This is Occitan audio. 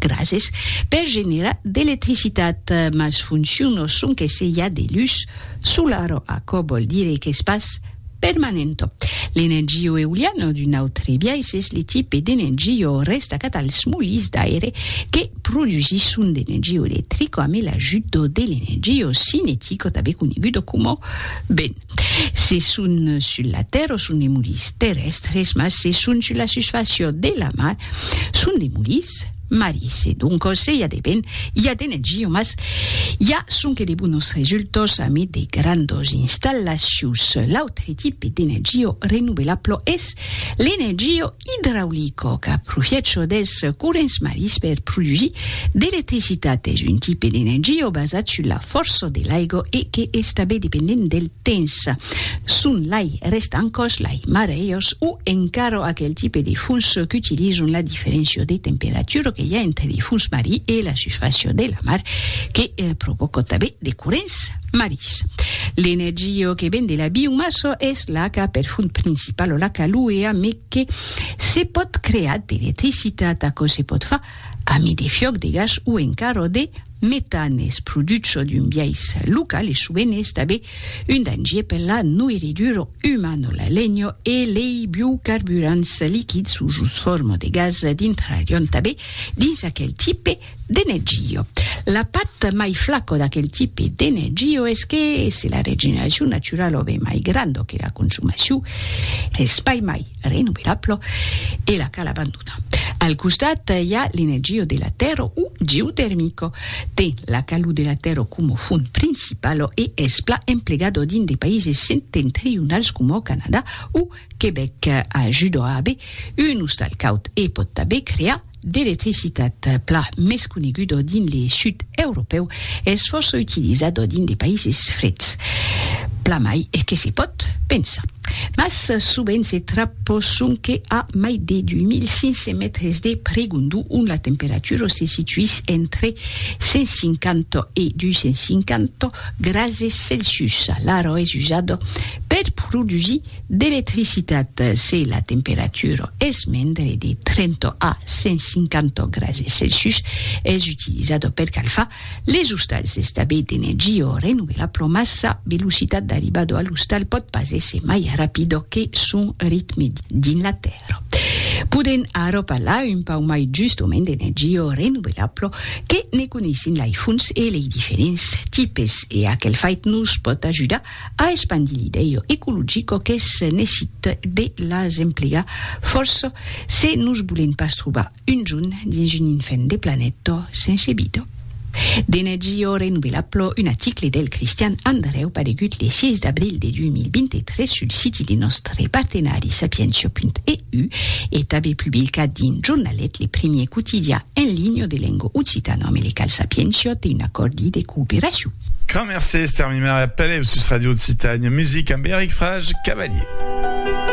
Grases per generar d'electricitat, mas foncion o son que se i a de lus solar o aquò vòl dire qu'es pas permanent. L'energia o euliana o d'un autre biais es le tipe d'energia o restacat als molins d'aire que produsisson d'energia electrica amé l'ajut o de l'energia o cinetica tanben coneguda coma ben. Se son sul la tèrra son de molis terrèstres, mas se son sul la susfàcia de la mar son de molis maris. E doncos i a de vent, i a de nègia, mas i a sonque de bonos resultas amid de grandas installacions. L'autre tipe d'energia renovelabla es l'energia Idraulico qu'a profiècho dels corrents marins per produsir d'electricitat es un tipe d'energia basat sus la fòrça de l'aiga e que es tanben dependent del temps. Son lai rèstan còs lai marèias o encara aquel tipe de fons qu'utilizan la diferéncia de temperatura que i a entre de fons marin e la susfàcia de la mar que provòca tanben de corrents. Maris. L'energio que ven de la biomasso es l'aca per font principalo l'aca luea me que se pòt creat d'electricitat aquò se pòt fa a mi de fiòc de gas o encaro de metan es produch çò d'un biais local e sovent es tabé un dangier per la noirriduro umano la lenho e lei biocarburants liquids o jos forma de gas d'intrarion tabé dins aquel tipe D'energio. La part mai flaco d'aquel tipe d'energio es que se la regeneracion naturalo ve mai grando que la consumacion, es pas mai renovelablo e la cal abandonar. Al costat i a l'energio de la tèrra o geotermico. Ten la calor de la tèrra coma font principalo e es plan emplegado dins de païses septentrionals coma au Canadà o Quebec. Ajuda a aver un ostal caud e pòt tanben crear d'electricitat pla mès conegudo dins le sud europèu es fòrça utilizado dins de païses freds, pla mai que se pòt pensar. Mas sovent se trapò sonque a mai de 2500 mètres de pregondu ont la temperatura se situís entre 150 e 250 grases Celsius. L'aro es usado per produsir D'electricitat se la temperatura es mendre de 30 a 150 grase Celsius, es utilizada per calfar les ostals d'estabè d'energia renovelabla mas sa velocitat d'arribada a l'ostal pòt pas èsser mai rapida que son ritme dins la tèrra. Podèm ara parlar un pauc mai justament d'energia renovelabla que ne coneissin lei fonts e lei diferents tipes e aquel fait nos pòt ajudar A espandir l'idèu ecologico qu'es necite de las emplegar fòrça se nos bolen pas trobar un junt dins un infèn de planeta sense vida. D'energia renovelabla, un aticle del Cristian Andrèu paregut le 6 d'abril de 2023 sul siti de nòstre partenari sapientia.eu e tanben publicat dins Jornalet, le primièr quotidian en linha de lenga occitana, amb le cal Sapientia té un acòrdi de cooperacion. Grand mercé Esther Mimer e apèl eu sus Radio Occitània Music amb Eric Frage Cavalier.